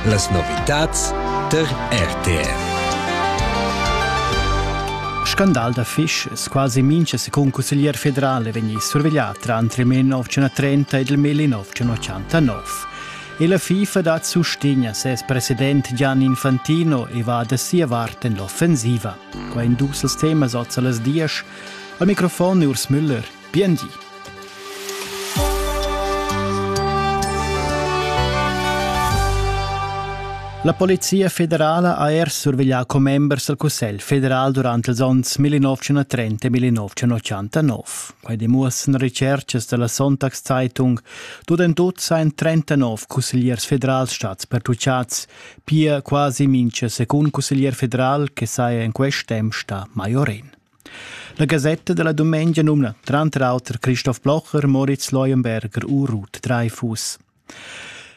Las novitads tar RTR. Scandal da fisch quasi mincha secund cusseglier federal è vegni surveglià trantre 1930 ed il 1989. E la FIFA dat sustegn a ses president Gian Infantino e va da sia vart en l'offensiva. Qua in dus temas oz a las dias. Al microfon Urs Müller. Bien di. La Polizia federala ha er surveglià commembers dal Cussegl federal durant ils onns 1930-1989. Quai demuossan recerchas da la Sonntagszeitung. Tut en tut sain 39 cussegliers federals stats pertuchads, pia quasi mincha secund cusseglier federal che saja in quest temp sta maiorin. La gasetta dalla dumengia numna tranter auter Christoph Blocher, Moritz Leuenberger u Ruth Dreifuss.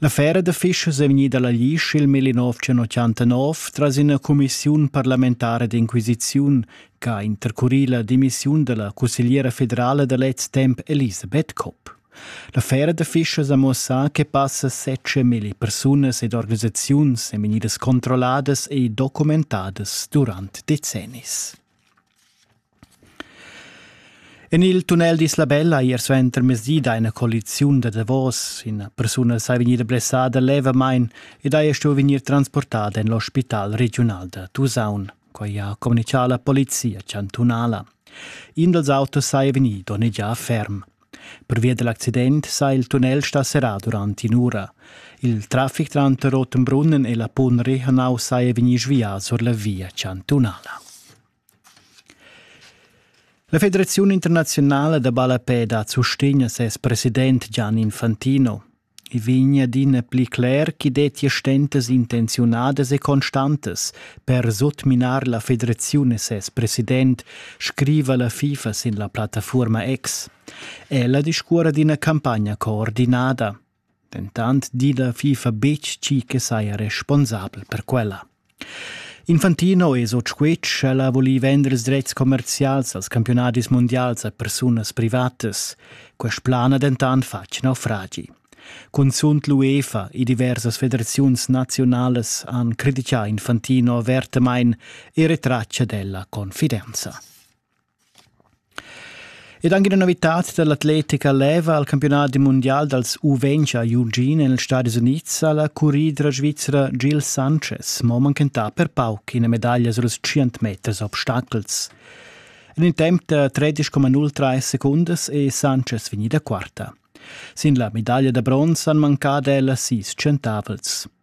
La fera da Fischers è vegnida alla Lisch il 1989 tras ina cumissiun parlamentara d'inquisiziun che ha intercurì la dimissiun dalla cussegliera federala da lez temp Elisabeth Kopp. La Fera da fischas ha muossà che passa setschamilli persunas ed organisaziuns ein vegnidas controlladas e documentadas durant decennis. En il tunnel d'Isla Bella ier suenter mezdi da ina coaliziun da davos ina persuna sei vegnida blessada levamain ed hai stuì vegnir transportada en l'ospital regiunal da Tusaun, quai ha communichà la polizia chantunala. In dals autos sei vegnì donnegià ferm. Pervia dal accident sa il tunnel stà serrà durant in'ura. Il traffic tranter Rottenbrunnen e la Punri hanau saja vegnì svià sur la via chantunala. La Federazione internazionale da balapeda sustegna ses president Gian Infantino. I vegn adina pli cler ch'i dettia stentas intenziunadas e constantas per sutminar la federaziun e ses president, scriva la FIFA sin la plattafuorma X. Ella discuora d'ina campagna coordinada. Dentant di la FIFA betg tgi che saja responsabel per quella. Infantino es o tschuech ch'ella ha vulì vender ils drets commercials als campiunadis mundials a persunas privatas. Quest plan ha dentant fatg naufragi. Cunzunt l'UEFA e diversas federaziuns nazionalas han critichà Infantino avertamain e retratg ad ella confidenza. Ed anche una novità dell'atletica leva al campionat mundial dals U20 a Eugene negli Stati Uniti alla curridra svizzera Gil Sanchez mo manchentà per pauc ina medaglia suls 100 meters obstacels. En in temp da 13,03 secundas è Sanchez vegnida quarta. Sin la medaglia da bronz han mancà ella sis centavels.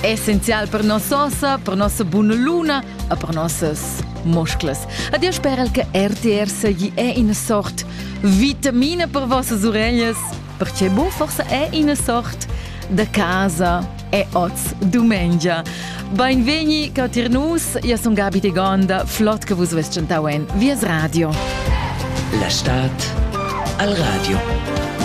essenzial per noss'ossa, per nossa buna luna e per nossas musclas. Adio sperel che RTR seigi è ina sort vitamina per vossas uregnas, perché bu forse è ina sort da casa e oz dumengia. Beinvegni catir nus, io sun Gabi de Gonda, flott che vus vest cantau en Vies Radio. La Stadt al Radio.